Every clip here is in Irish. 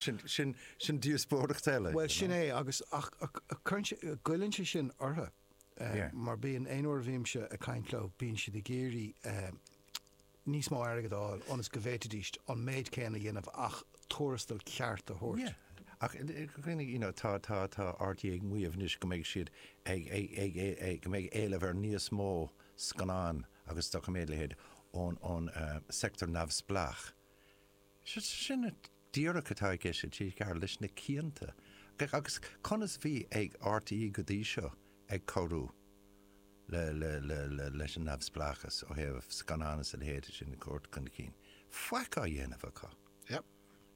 Sin díospóireacht eile. Bhuel, sin é agus, ach cuireann sé, goilleann sé sin orthu mar bíonn, aon uair a bhímse ag caint leo, bíonn siad ag iarraidh níos mó airgid a fháil ionas go bhféadfaidís an méid céanna a dhéanamh ach tuarastal ceart a thabhairt. Ach ar ndóigh, you know, tá RTÉ ag maíomh anois go mbeidh siad ag, go mbeidh éileamh ar níos mó scannán agus doiciméad, a leithéid, ón sector neamhspleách. Sin é díreach atá ag TG4 leis na cianta. Agus conas a bhí ag RTÉ go dtí seo ag cabhrú leis an neamhspleáchas ó thaobh scannán is a leithéid sin a thabhairt chun cinn? Faic á dhéanamh acu. Yep.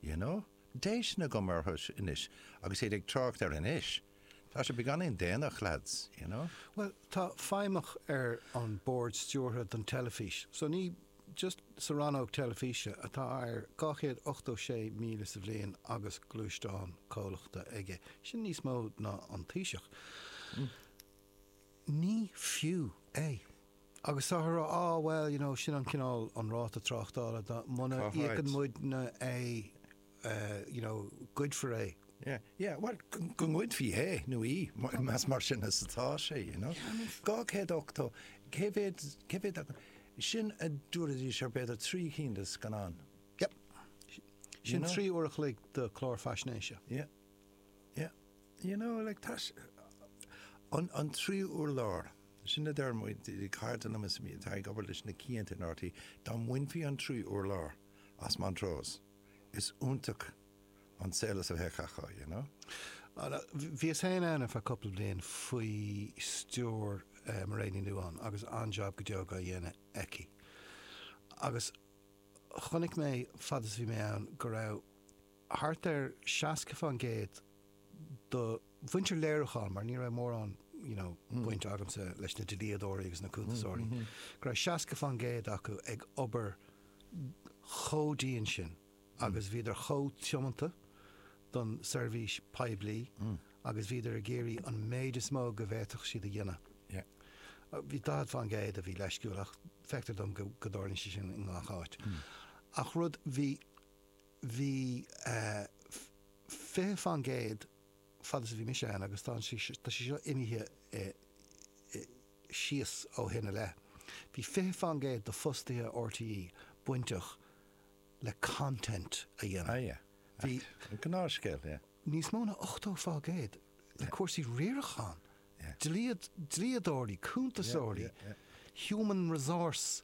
You know? Déistean agam orthu anois agus iad ag trácht ar anois. Tá sé beagáinín déanach, lads, you know? Bhuel, tá feidhmeach ar an Bord Stiúrtha don teilifís, so ní just sa rannóg teilifíse atá ar 286,000 sa bhliain agus gluaisteán comhlachta aige, sin níos mó ná an Taoiseach. Ní fiú é. Agus táthar á rá, bhuel, you know, sin an cineál, an ráta tráchtála, muna n-íocann muidne é, you know, goidfear é. Yeah, yeah, well, go ngoidfí é nó í, más mar sin atá sé, you know. 280, cé mhéad, cé mhéad acu? Sin a dúraidís ar b'fhéidir trí chinn de scannáin. Yep. Sin trí uair a chloig de chlár faisnéise. Yeah, yeah. You know, like, tá sé, an, an trí uair láir, sin a deir muid, ag caitheamh den am is a bhí, atá ag obair leis na cianta in RTÉ, dá mbainfí an tríú hurlár as Montrose, is iontach an saol a bheadh acu, you know. Bhíos féin ann ar feadh cúpla bliain faoi stiúir Mhairéad Ní Nuadháin agus an-jab go deo á dhéanamh aici. Agus chonaic mé, fad is a bhí mé ann, go raibh thart ar 60 fán gcéad de mhuintir léiriúcháin, mar ní raibh mórán you know baint agamsa leis na dlíodóirí agus na cuntasóirí, go raibh 60 fán gcéad acu ag obair chomh dian sin agus bhíodar chomh tiomanta don seirbhís poiblí agus bhíodar ag iarraidh an méid is mó go bhféadfadh siad a dhéanamh. Yeah. Bhí 40 fán gcéad a bhí leisciúil ach feictear dom go dtarlaíonn sé sin i ngach áit. Ach rud, bhí, bhí 20 fán gcéad fad is a bhí mise ann agus tá sí tá sí seo imithe síos ó shin i leith. Bhí 20 fán gcéad d'fhostaithe RTÉ bainteach le content a dhéanamh. Aye, bhí gnáthscéal, yeah. níos mó ná 80 fá gcéad le cúrsaí riaracháin, dlíodóirí, cuntasóirí, human resource.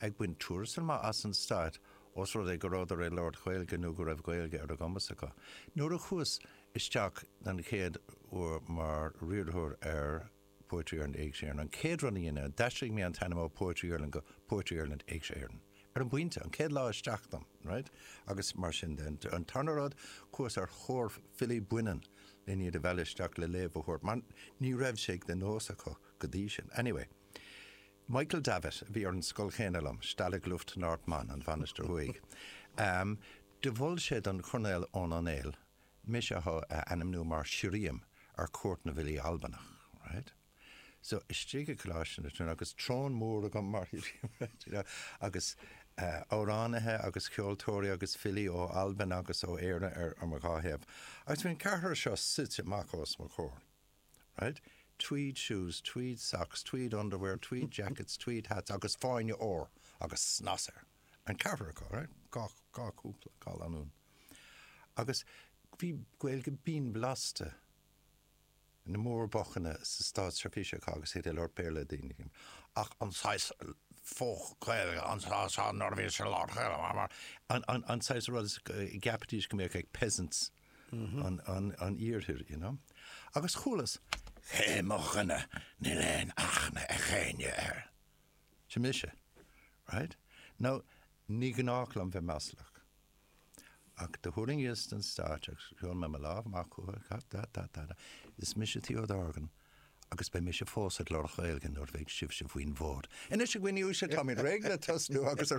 ag baint tuarastal maith as an Stát os rud é go rabhadar ag labhairt Gaeilge nó go raibh Gaeilge ar a gcumas acu. Nuair a chuas isteach den chéad uair mar riarthóir ar Poetry Ireland Éigse Éireann, an chéad rud a dheineas, d'aistrigh mé an t-ainm ó Poetry Ireland go Poetry Ireland Éigse Éireann. Ar an bpointe, an chéad lá isteach dom, raight? Agus mar sin de. An tarna rud, chuas ar thóir filí baineann le hiad a mhealladh isteach le léamh a thabhairt mar ní raibh sé de nós acu go dtí sin. Anyway. Michael Davitt, a bhí ar an scoil chéanna liom, Stalag Luft Nord Mann, An Mhainistir Thuaidh, do mhol sé don Chornéal Eoin Ó Néill mise a ainmniú mar shirriam ar Chuairt na bhFilí Albanach. Right. So, istigh i gColáiste na Tríonóide, agus throne mór agam mar shirriam, right, you know, agus amhránaithe agus ceoltóirí agus filí ó Albain agus ó Éirinn ar mo dhá thaobh, agus bhí an ceathrar seo suite amach os mo chomhair. right? Tweed shoes, tweed socks, tweed underwear, tweed jackets, tweed hats agus fáinne ór agus snas air. An ceathrar acu, right? Dhá, dhá chúpla, dhá lanúin. Agus bhí Gaeilge binn blasta na mórbocanna sa Státsheirbhís acu agus iad ag labhairt le chéile. Ach an saghas faux Gaeilge, an saghas seo nuair a bhíodís ag labhairt Gaeilge, an saghas rud a gceapfaidís go mbeadh ag peasants. an Iarthair, you know, agus chualas, cé hé mo dhuine, níl aon aithne ag éinne air. Sin mise, right? Now, ní gnách liom bheith maslach, ach do thuirling síos den stáitse agus chuir mé mo lámh amach chucu, ta ta ta ta ta, is mise Theo Dorgan agus beidh mise fós ag labhairt Gaeilge nuair a bheidh sibhse faoin bhfód. Anois a dhaoine uaisle, táimid réidh le tosnú agus a.